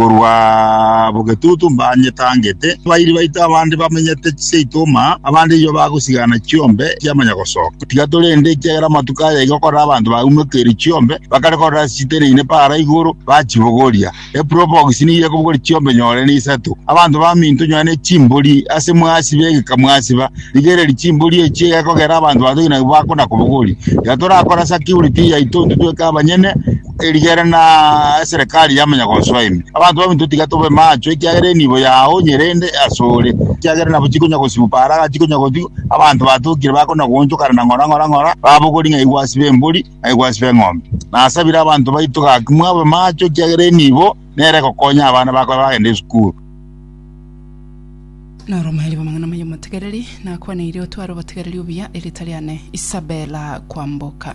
Korwa bogetutu mbanyetangeete, abairi baito abande bamenyete chiseito oma, abande inwe bagosigana chiombe chiamanya gosoka. Tiga torende, ekiagera amatuko aya igo korora abanto baumekeire chiombe, bakare korora ase chiteneine para igoro, bachibogoria. Eprobox nigo ekobogoria chiombe nyore na isato. Abanto baminto nyore ne chimbori, ase mwasiba egeka mwasiba. Rigereria chimbori echi egekogera abanto batogi nabwo bakona kobogoria. Tiga torakore ase acurity yaito intwe tweka abanyene, erigere na eserekari y'amanyagonsoa ime. Abanto baminto tiga tobe macho, ekiagera enibo yao nyerende asore, ekiagera nabo chikonya gosibu paara iga chikonya gotigwa, abanto batokire bakona goonchokana na ng'ora, ng'ora, ng'ora, babogori ng'ai gwasiba embori, ng'ai gwasiba eng'ombe. Nasabire abanto baito gaki mwabe macho, ekiagera enibo nere egokonya abana bako babe bagenda esukuru. Noromairi bw'amang'ana amaya omotegereri, nakwaneirie otware obotegereri obuya, erita riane Isabella Kwamboka.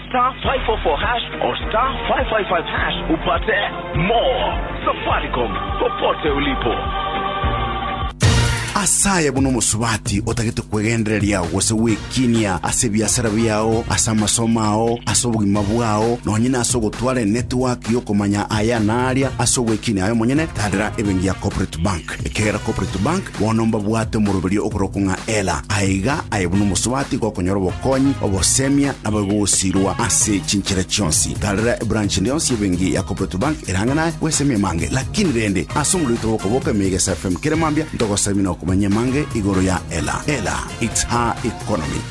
Star 544 hash or star 555 hash upate more. Safaricom, popote ulipo. asaye buna omosubati otagete kwegendereria gose gwekinia ase ebiasara biao ase amasomo ao ase obogima bwao nonye na ase ogotwara enetiwaki y'okomanya aya na aria ase ogwekinia aye omonyene tadera ebengi ya corporate bank ekegera corporate bank Bono mbabwate omoroberio okorokwa ng'a Ela, aye iga aye buna omosubati gokonyora obokonyi, obosemia, naboigo ogosirwa ase chinchera chionsi. Tarera ebranch ende yonsi y'ebenki ya Cooperative Bank eraanga naye gwesemi amange. Lakini rende, ase omorwete bw'okoboka emeiga ase FM kera mambia, ntogosabie na okomanya amange igoro ya Ela. Ela, it's her economy.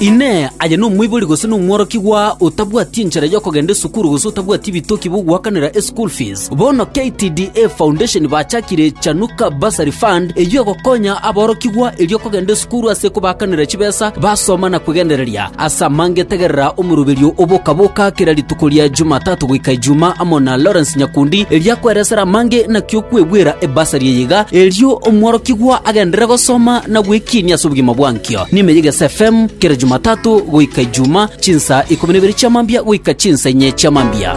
Inee! Aye nomoibori gose nomworokigwa otabwati enchera y'okogenda esukuru gose otabwati ebitoki biogoakanera eschool fees? Bono KTDA Foundation bachakire Chanuka Bursary Fund eyio egokonya aborokigwa erio kogenda esukuru ase kobaakanera chibesa basoma na kwegendereria. As'ama ngetegerera omoruberio o boka-boka kera rituko ria Jumatatu goika Ijuma amo na Lawrence Nyakundi, eria kweresera amange nakio kwegwera ebasari eye iga, erio omworokigwa agenderere gosoma na gwekiinia ase obogima bwankio. Niime y'Egese FM, kera Jumatatu goika Ijuma, chinsa ikomi na ibere chiamambia goika chinsa inye chiamambia.